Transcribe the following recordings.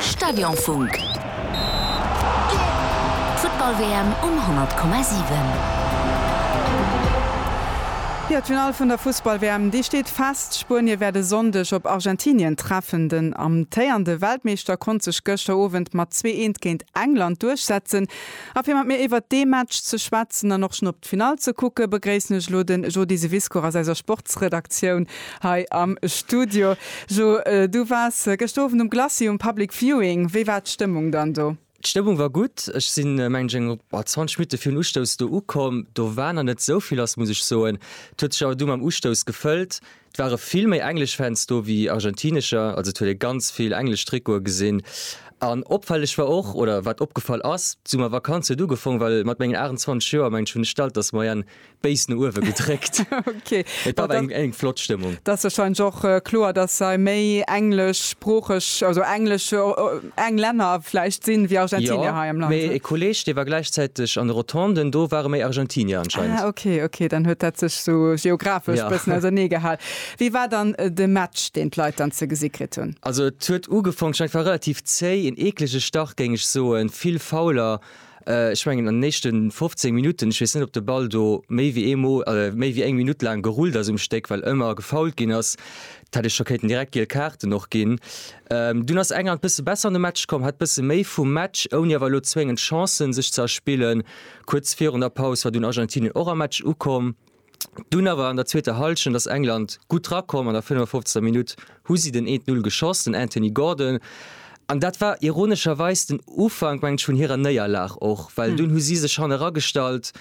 Stadionfunk. D'Futtball-WM um 100,7. Jo, d'Finall vun der Fussball-WM, déi steet fest. Spuenie wäert e Sonndeg op Argentinien treffen. Den amtéierende Weltmeeschter konnt sech gëschter Owend mat zwee Eent géint England duerchsetzen. A fir mat mir iwwert dee Match ze schwätzen an och schonn op. D'Finall ze kucke begréissen ech elo den Jody Sewiscourt aus eiser Sportsredaktioun hei am Studio. Jo, du waars gëscht Owend um Glacis um Public Viewing. Wéi war d'Stëmmung dann do? D'Stëmmung war gutt. Ech sinn, mengen ech, eng 20 Minutte virun Ustouss do ukomm. Do war nach net esou vill lass, muss ech soen. Et huet sech awer du mam Ustouss gefëllt. Et ware vill méi englesch Fans do wéi argentinescher, also et huet ee ganz vill englesch Trikote gesinn. An opfälleg war och, oder wat opgefall ass, d'Summervakanz huet ugefong, well mat mengen 28 Joer mengen ech hunn ech d'Altersmoyenne béis no uewe gedréckt. Et war awer eng flott Stëmmung. Dat ass wahrscheinlech och kloer, dass hei méi engleschsproocheg, also englesch. eng Länner vläicht sinn, wéi Argentinier hei am Land. Jo, mee e Kolleeg, dee war gläichzäiteg an de Rotonden, do ware méi Argentinier anscheinend. Ah, ok, ok, dann huet dat sech sou geographesch e bëssen ausernee gehal. Wéi war dann de Match, deen d'Leit dann ze gesi kritt hunn? Also et huet ugefangen, war relativ zéi, en eeklege Start géing ech soen, vill Fouler, Ech mengen an den éischte 15 Minutten, ech weess net op de Ball do méi wéi eemol, méi wéi eng Minutt laang gerullt ass um Stéck, well ëmmer gefoult ginn ass, dat hätt ech scho kéinten direkt giel Kaarten och ginn. Dunn ass England bësse besser an de Match komm, hat bësse méi vum Match, ouni awer elo zwéngend Chancen sech ze erspillen. Kuerz virun der Paus war dunn Argentinien och am Match ukomm. Dunn awer an der zweeter Hallschent ass England gutt drakomm. An der 55. Minutt hu si den 1-0 geschoss, den Anthony Gordon. An dat war ironescherweis den Ufank, mengen ech, vun hirer Néierlag och, well dunn hu si sech hanne ragestallt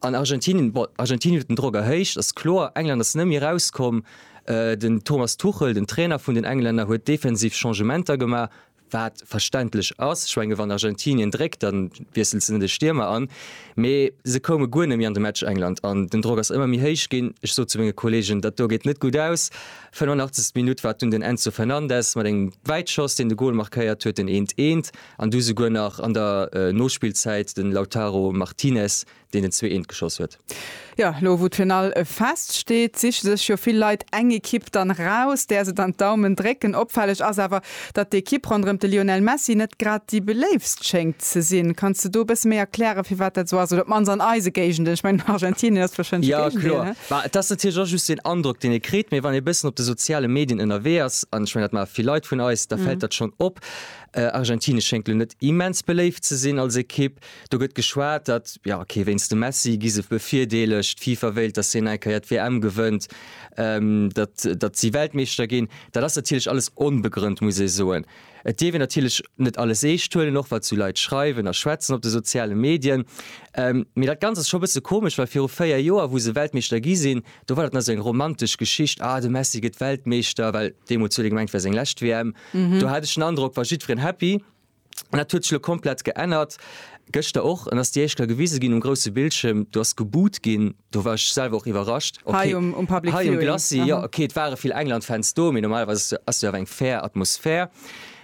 an Argentinien, bon, Argentinien huet den Drock erhéicht, ass kloer. England ass net méi erauskomm. Den Thomas Tuchel, den Trainer vun den Englänner, huet defensiv Changementer gemaach. wat verständlech ass, ech menge wann Argentinien dréckt, da wiesselt se net e Stiermer an, mee se koume guer net méi an de Match. England an den Drock ass ëmmer méi héich ginn. Ech sot zu menge Kolleegen, dat do geet net gutt aus. 85. Minutt war et dunn den Enzo Fernandez mat engem Wäitschoss, deen de Gol markéiert huet, den eent, eent an du souguer nach an der Nospillzäit den Lautaro Martinez, deen den zwee Eent geschoss huet. Jo, lo wou d'Finall fest steet, siche sech jo vill Leit eng Ekipp dann raus, där se dann d'Daumen drécken. Opfälleg ass awer, datt d'Ekipp ronderëm de Lionel Messi net grad déi beléiftst schéngt ze sinn. Kanns de do e bësse méi erklären, firwat dat esou ass? Oder op d'mannst an eise Géigenden, ech mengen, Argentinien ass warscheinlech e Géigendeel, ne? Jo, kloer. Bah, et ass natierlech och just den Androck, deen ee kritt. Mee wann ee e bëssen op de soziale Medien ënnerwee ass, an ech mengen, dat maache vill Leit vun eis, da fält dat schonn op. Argentinien schéngt lo net immens beléift ze sinn als Ekipp. Do gëtt geschwat, datt, jo ok, wéinst dem Messi gi se bevirdeelegt, d'FIFA wéilt, datt hien eng Kéier d'WM gewënnt, datt, datt si Weltmeeschter ginn. Dat ass natierlech alles onbegrënnt, muss ee soen. Et dierf een natierlech net alles eescht huelen, och wat sou Leit schreiwen a schwätzen op de soziale Medien. Mee dat Ganzt ass scho bësse komesch, well viru véier Joer, wou se Weltmeeschter gi sinn, do war dat nach esou eng romantesch Geschicht, ah de Messi gëtt Weltmeeschter, well deemools huet ee gemengt, wär seng lescht WM. Do hat ech den Androck, war jiddwereen happy. An dat huet sech elo komplett geännert, gëschter och, an ass déi éischt Kéier gewise ginn um grousse Bildschierm, do ass geboot ginn, do war ech selwer och iwwerrascht, ok. Hei um, um Public Viewing? Hei um Glacis, aha, jo, ok, et ware vill England-Fans do, mee normalerweis ass do, ass do awer eng fair Atmosphär.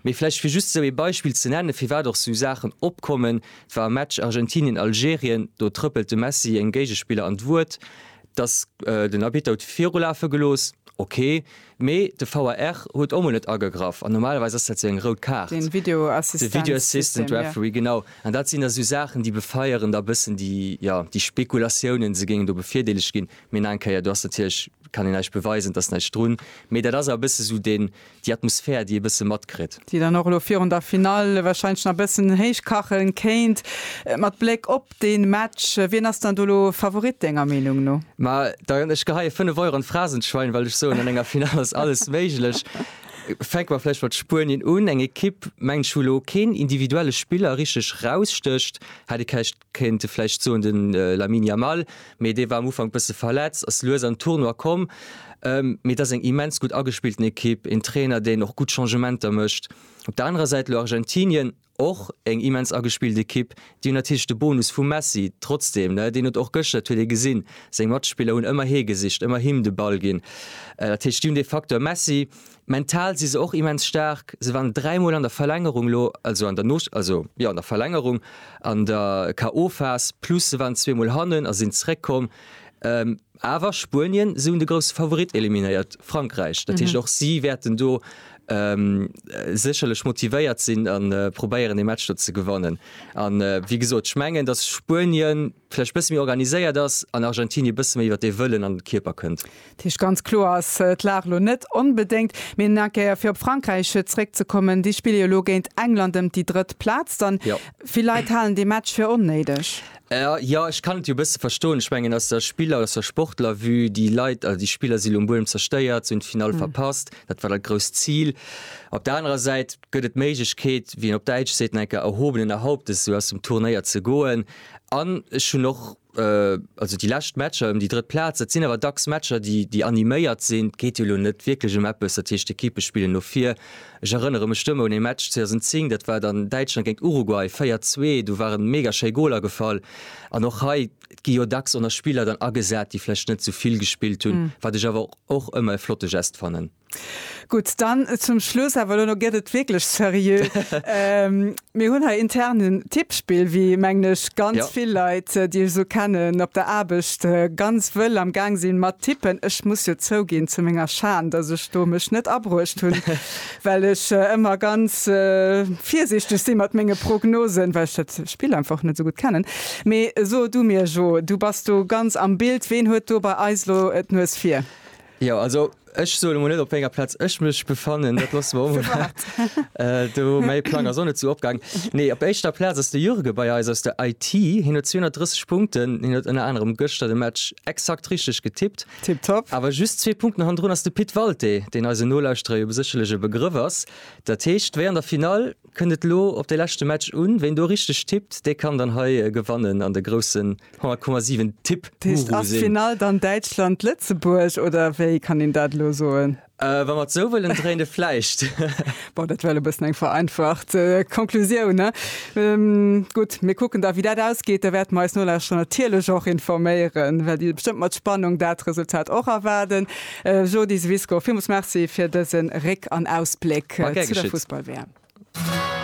Mee vläicht fir just esou ee Beispill ze nennen, firwat och esou Saachen opkommen, et war e Match Argentinien-Algerien, do trëppelt de Messi engem Géigespiller an d'Wuert, datt den Arbitter huet virulafe gelooss, ok. Mee de VAR huet och mol net agegraff an normalerweis ass dat sou eng rout Kaart. Den Video Assistance System. De Video Assistant Referee, genau. An dat sinn da sou Saachen, déi befeieren da bëssen déi, jo, déi Spekulatiounen, se géingen do bevirdeelegt ginn. Mee nach eng Kéier, do ass natierlech, kann een näischt beweisen, et ass näischt drun. Mee dat ass awer e bësse sou den, déi Atmosphär, déi ee bësse matkritt. Déi dann och elo virun der Finall wahrscheinlech nach e bëssen héich kache kéint. Mat Bléck op. Deen Match, wien ass dann do lo Favorit denger Meenung no? Ma da ech geheie 5 Euro an d'Phrasenschwein, well ech soen an enger Final ass alles méiglech. Fänke mer vläicht mat Spuenien un, eng Ekipp mengen ech wou lo keen individuelle Spiller richteg rausstécht. Hätt ee kächt kéint e vläicht soen den Lamine Yamal, mee dee war am Ufank bësse verletzt, ass lues an Tournoi komm. Mee et ass eng immens gutt agespillten Ekipp, een Trainer deen och gutt Changementer mécht. Op der anerer Säit lo Argentinien. Och eng immens agespillt Ekipp. Déi hunn natierlech de Bonus vum Messi. Trotzdeem, ne, deen huet och gëschter, dat huet ee gesinn, seng Matspiller hunn ëmmer hie gesicht, ëmmer him de Ball ginn. Dat heescht, déi hunn dee Facteur Messi. Mental si se och immens staark. Se waren dräi Mol an der Verlängerung elo, also an der Nospillphas, also, jo, an der Verlängerung, an der KO-Phas, plus se waren zwee Mol hannen a sinn zeréckkomm. Awer Spuenien, se hunn de grousse Favorit eliminéiert, Frankräich. Dat heescht, och si wäerten do sécherlech motivéiert sinn a probéieren, dee Match do ze gewannen. A wéi gesot, ech mengen, datt Spuenien vläicht e bësse méi organiséiert ass an Argentinie e bësse méi iwwer dee Wëllen an de Kierper kënnt. Dat heescht, ganz kloer ass d'Lag elo net onbedéngt. Mee nach eng Kéier, fir op Frankräich zeréckzekommen, déi spille jo elo géint England ëm déi drëtt Plaz. Vill Leit halen dee Match fir onnéideg. Jo, ech kann et jo e bësse verstoen. Ech mengen aus der Spiller-, aus der Sportlervue, déi Leit, also déi Spiller si lo um Buedem zerstéiert, si hunn d'Finall verpasst, dat war dat grousst Zil. Op der anerer Säit gëtt et d'Méiglechkeet, wéi een op Däitsch seet, no enker erhobenener Hauptes esou aus dem Turnéier ze goen. An ech hunn och, also déi lescht Matcher ëm déi drëtt Plaz, dat sinn awer dacks Matcher, déi, déi animéiert sinn. Et geet jo lo net wierklech ëm eppes, dat heescht Ekippe spillen no vir. Ech erënnere mech duerno un ee Match 2010, dat war dann Däitschland géint Uruguay, 4, 2, do waren mega schéi Goler gefall. An och hei, et gi jo dacks och nach Spiller dann agesat, déi vläicht net sou vill gespillt hunn, wat ech awer och ëmmer e flotte Gest fannen. Gutt, dann zum Schluss, awer elo gëtt et wierklech seriö. Mir hunn hei intern en Tippspill, wéi, mengen ech, ganz vill Leit, déi ech esou kennen, op der Aarbecht ganz wëll am Gaang sinn mat tippen. Ech muss jo zouginn, zu menger Schan, datt ech do mech net abruecht hunn, well ech ëmmer ganz virsiichteg si mat menge Prognosen, well ech dat Spill einfach och net esou gutt kennen. Mee so du mir, Jo, du bass do ganz am Bild, ween huet do bei eis elo d'Nues vir? Jo, also ech soe mol net op wéi enger Plaz ech mech befannen, dat loosse mer emol dat. Do mäi Plang ass och net sou opgaang. Nee, op éischter Plaz ass de Jurgen bei eis aus der IT. Hien huet 230 Punkten. Hien huet ënner anerem gëschter de Match exakt richteg getippt. Tipptopp. Awer just zwee Punkten hannendrun ass de Pit Walté, deen eisen Nolauschterer jo besécherlech e Begrëff ass. Dat heescht, wéi an der Finall, kënnt et elo op de leschte Match un. Ween do richteg tippt, dee kann dann hei gewannen an de groussen 0,7 Tipp Finall dann Däitschland Lëtzebuerg oder wéi kann een dat lo soen? Äh, wa mat sou wëllen dréine fleicht. Bon dat well e bëssen eng vereinfacht äh, Konklusioun ne ähm, Gutt mir kucken da wie dat ausgeet, da wäert meis Nolauschterer natierlech och informéieren, well Dir bestëmmt mat Spannung dat Resultat och erwaarden. Äh, Jodi Swisko villmools Merci fir dëse Réck an Ausbléck zu der Fussball-WM.